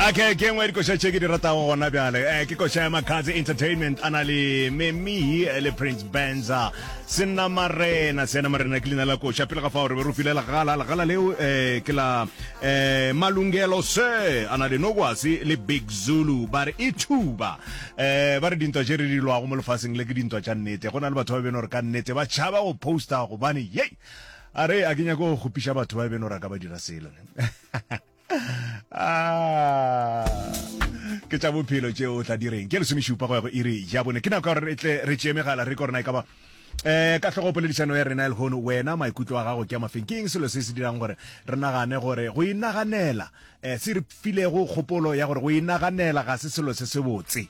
okay ke nngwe dikoša tše ke di ratago gona bjale um ke koša ya macars entertainment a na le memihi eh, le prince benza sena marena sena marena ke leina la koša pele ga fao re be re file legala legala leo um ke la um malungelo se a na le nokwasi le big zulu ba re e thuba um ba re dintwa tše re di lwago mo lefaseng le ke dintwa tša nnete go na le batho ba beno re ka nnete ba tšhaba go posta gobane yei a re a ke nyako go kgopiša batho ba beno ra ka ba dira selo Ah. ke tša bophelo tšeo o tla direng ke lesomešupa go ya go iri ja bone ke nako ya gore re tle re tšee megala re korona e ka ba um ka tlhogo poledišano ya rena e lehono wena maikutlo a gago ke a mafeng ke eng selo se se dirang gore re nagane gore go inaganela um se re filego kgopolo ya gore go inaganela ga se selo se se botse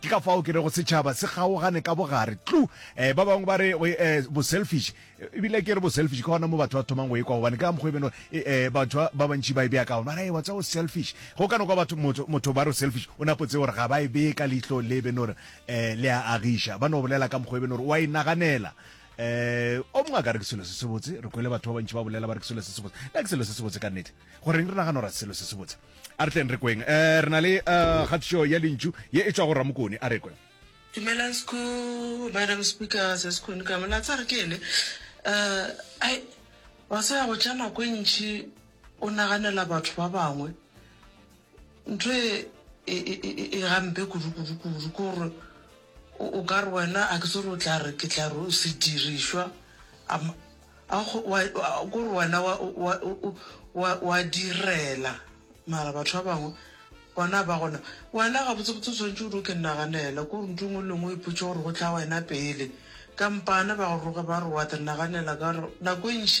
Ke ka fao ke rego setšhaba se kgaogane ka bogare. Tlu! Eh, ba bangwe ba re, go, eh, bo-selfish. Ebile ke re bo-selfish, ke gona mo batho ba thomang go e kwa, gobane ke ka mokgwa e beno, eh, eh, batho ba, ba bantši ba e bea ka gona. Ba re, Ee, wa tseba, o selfish. Go ka no kwa batho, motho, motho ba re o selfish, o napo tsebe gore ga ba e bee ka leihlo le e beno gore, eh, le a agiša. Ba no bolela ka mokgwa e beno gore o a inaganela. Eh, o mongwe a ka re, Ke selo se sebotse. Re kwele batho ba bantši ba bolela ba re ke selo se sebotse. Na ke selo se sebotse ka nnete? goreng re nagana gore selo se se botse a re tleng re kweng um re na le um kgatišo ya lentšu ye e tšwa go ramokone a re kwe Dumelang sku madam speaker se sekone ka mona tsare ke ene uh ai wa se go tša nako e ntši o naganela batho ba bangwe ntho e e, e, e, e gampe kudu kudu kudu ke gore O, o ka re, Wena, a ke se gore o tla re, ke tla re o sedirišwa, a, a go, wa, a ke gore wena wa, wa, wa, wa direla, mara batho ba bangwe bona ba gona. Wena gabotsebotse o swanetše o di o ke nnaganela, ko ndu nngwe le nngwe o ipotše gore go tla wena pele. Kampane ba go roge ba re wa te nnaganela, ka gore nako e ntši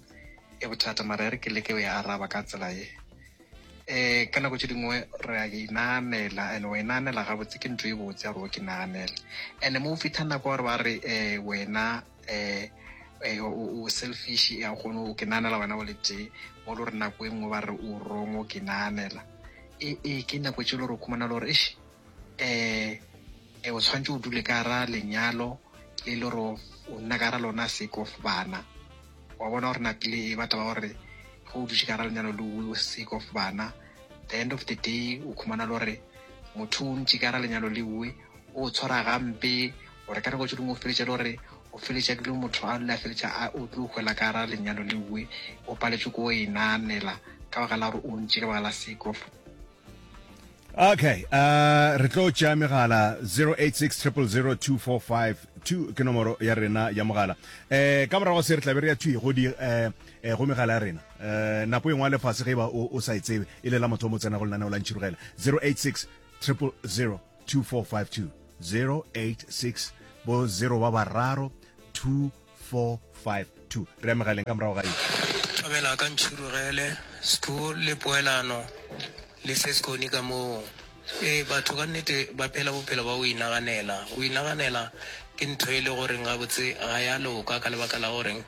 e bothata mara e re ke leke o e araba ka tsela e um ka nako tse dingwe re a inaanela and o inaanela gabotse ke ntho e botse ya gore o ke naanele and mo o fitlha nako gore ba re um wena um o selfish ya kgone o ke naanela wena o le tee mo lo re nako e nngwe ba re o wrong o ke naanela ee ke nako tse le gore o khumana le gore um um o tshwanetse o dule ka ra lenyalo le le gore o nna ka ra lona seko bana wa bona gore nako le e batla ba gore ge o dutse ka ra lenyalo le o seko bana the end of the day o khumana le gore motho o ntse ka ra lenyalo le uwe o tshwara gampe gore ka nako tse dingwe o feletša le gore o feletša dilo motho a lula feletša a o tlo hwela ka ra lenyalo le uwe o paletswe ko o e naanela ka baka la gore o ntse ka baka la seko okay uh, re tlo tšea megala 0860002452 ke nomoro ya rena ya mogala eh ka morago se re tlabe re ya thwi go di eh, eh go megala ya rena eh nako engwe le fase ge ba o, o sa e tsebe e le la motho mo tsena go lenaneo la ntšhirogela 0860002452 086 bo 0 ba bararo 2 452 Re amega leng ka morago ga eng? Thobela ka ntšhurugele, sku le poelano le se skoni ka moo. Ee, batho ka nnete ba phela bophelo ba go inaganela. Go inaganela ke ntho e le goreng gabotse ga ya loka ka lebaka la goreng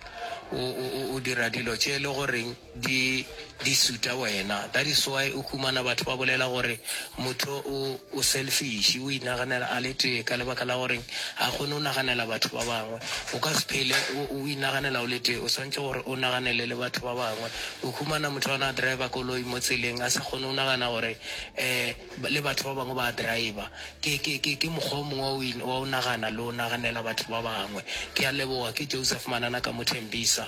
o, o, o, o dira dilo tše e le goreng Di di suta wena. That is why o humana batho ba bolela gore motho o o selfish, o inaganela a le tee ka lebaka la goreng ha kgone go naganela batho ba bangwe. O ka se phele o o inaganela o le tee, o swantše gore o naganele le batho ba bangwe. O humana motho a na a driver koloi mo tseleng a sa kgone go nagana gore um le batho ba bangwe ba a driver. Ke ke ke ke mokgwa o mongwe wa go in wa go nagana le go naganela batho ba bangwe. Ke a leboga. Ke Joseph Manana ka Mothembisa.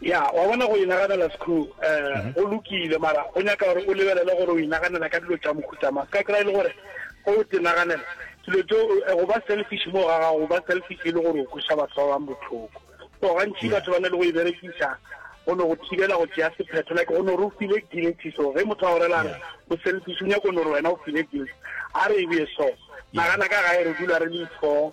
ya wa bona go inaganela sekhu um mhm. go lokile mara go nyaka gore o lebelele gore o inaganela ka dilo tša mokhutama se ka kry e le gore go o tinaganela dilo tso eh, go ba selfish mo ga gago go ba selfish e le gore o kweša batho ba bang botlhoko so gantši batho ba na le go e berekisa go ne go thibela go tšea sephetho like go ne gore o file guilty so ge motho a go rela re o selfish o nyako gore wena o file guilty a re e bee so nagana ka gae re dula re le four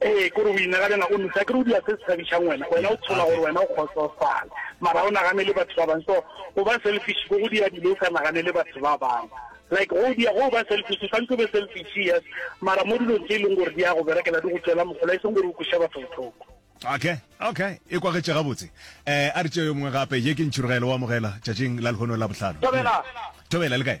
ee kore o inaganela o nosa kere o dira se se thabišang wena wena o tshola gore wena o kgotsofala mara o naganele batho ba bangwe so go ba selfish ko go dira dilo o sa naganele batho ba bangwe like go dia go ba selfish tshwanetse o be selfish yes mara mo dilong tse e leng gore di ya go berekela di go tswela mogola e seng gore o kweša batho botlhoko okay okay e kwagetse gabotse eh a re tšeo yo mongwe gape ye ke ntšhurugelo wa mogela tšatšing la lehono la bohlano tobela tobela le kae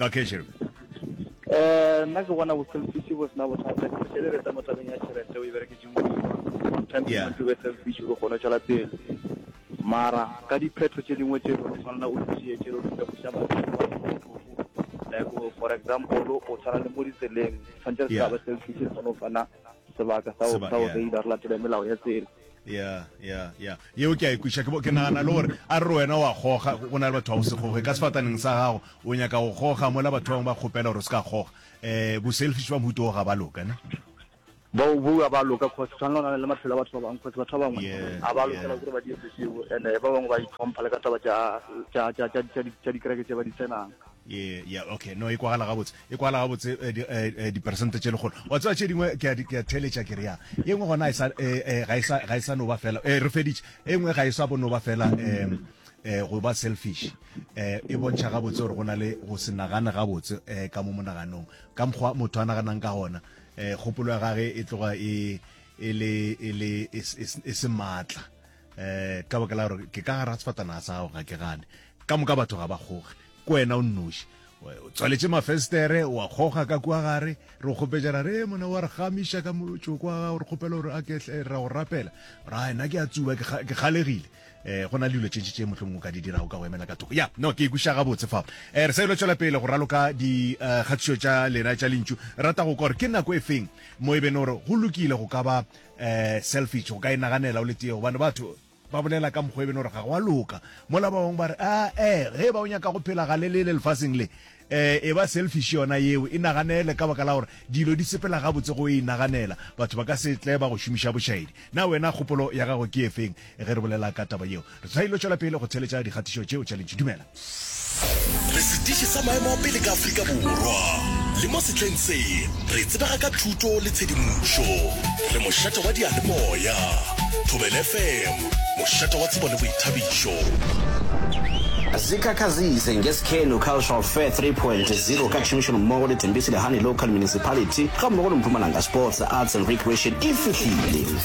okay sure eh nna ke bona boselfish bo sena bothata ke se le mo tabeng ya tšhelete o e bereketse mo sometimes yeah. to be selfish go kgona tšwela pele mara ka diphetho tše dingwe tše go tshwanela o tšee tše o di tlabuša batho like for example o tshwana le mo ditseleng tshwanetse re sa ba selfish re kgone go fana sebaka sa go reila re latele melao ya tsela ya ya ya yeo ke a ikwiša e ke nagana le gore a re wena wa goga go na le batho ba go se goge ka sefataneng sa gago o nyaka go goga mola batho bangwe ba kgopela gore o se ka goga um bo-selfish ba mohuto o ga ba loka ne ba o bua ba loka cause tshwana le le maphelo a batho ba bangwe cause batho ba bangwe a ba lokela gore ba dire seo and ba bangwe ba itlhompha le ka taba tša dikereke tse ba di tsenang Ye, ya, okay, no, e kwagala gabotse, e kwagala gabotse, eh, di, eh, eh, diperesente tše lekgolo. Wa tseba tše dingwe, ke a, di- ke a theletša ke re ya, ye nngwe gona e sa, eh, eh, ga e sa, ga e sa no ba fela, eh, re feditše, e nngwe ga e sa bo no ba fela, eh, eh, go ba selfish, eh, e bontšha gabotse gore go na le go se nagane gabotse, eh, ka mo monaganong, ka mokgwa motho a naganang ka gona, eh, kgopolo ya gage e tloga e, e le, e le, e, s- e, s- e se maatla. eh ka baka la gore ke ka gara sefatana sa gago ga ke gane ka moka batho ga ba kgoge ko wena o nnoši o tswaletše mafestere wa kgoga ka kua gare re o kgopetšana re mona wa re gamiša ka motšoko wa gago re kgopela gore a ke eh, ra go rapela ra ena ke a tsuba ke kga- ke kgalegile um go na le dilo tše ntši tše mohlomong o ka di dirago ka go emela ka thoko ya no ke ikuša gabotse fao um re sa ilo tšwela pele go raloka dikgatišo tša lena tša lentšu rata go kwa gore ke nako e feng mo e bene gore go lokile go ka ba Eh, selfish, o ka e naganela o le tee, gobane batho ba bolela ka mokgwa e beno gore ga go a loka. Mola ba bangwe ba re, ah, eh, ge e ba o nyaka go phela ga le lele lefaseng le, eh, e ba selfish yona yeo, e naganele ka baka la gore dilo di sepela gabotse go e inaganela. Batho ba ka se tle ba go šomiša bošaedi. Na wena kgopolo ya gago ke e feng ge re bolela ka taba yeo? Re ilo tšwela pele go theeletša dikgatišo tšeo tša lentšu. Dumela. Re setiši sa maemo a pele ka Afrika Borwa, le mo sehleng se re tsebega ka thuto le tshedimošo. Re mošate wa diyalemoya, Thobela FM, mošate wa tsebo le boithabišo. Zikhakhazise ngeSikhenu Cultural Fair 3.0 ka tšhomišanommogo le Tembisile Honey Local Municipality gammogo le Mpumalanga Sports, Arts and Recreation e fihlile.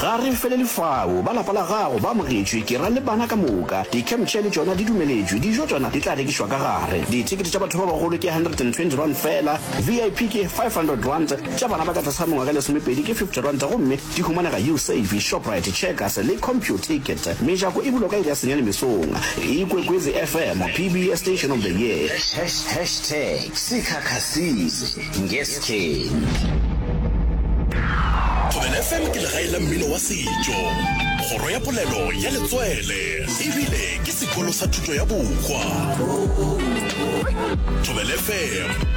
Ga re felele fao. Ba lapa la gago ba amogetšwe, ke ra le bana ka moka. Di-campchair le tšona di dumeletšwe. Dijo tšona di tla rekišwa ka gare. Dithekete tša batho ba bagolo ke R120 feela, VIP ke R500, tša bana ba ka tlase ga mengwaga e lesomepedi ke R50 gomme di humanega Usave, Shoprite, Checkers le Computicket. Mejako e bulwa ka iri ya senyane mesong. Ikwekwezi FM, PBS Station of the Year. Hashtags, Sikhakhasini. Ngestheni. Thobela FM ke legae la mmino wa setšo, kgoro ya polelo ya letswele ebile ke sekolo sa thuto ya bohwa. Thobela FM.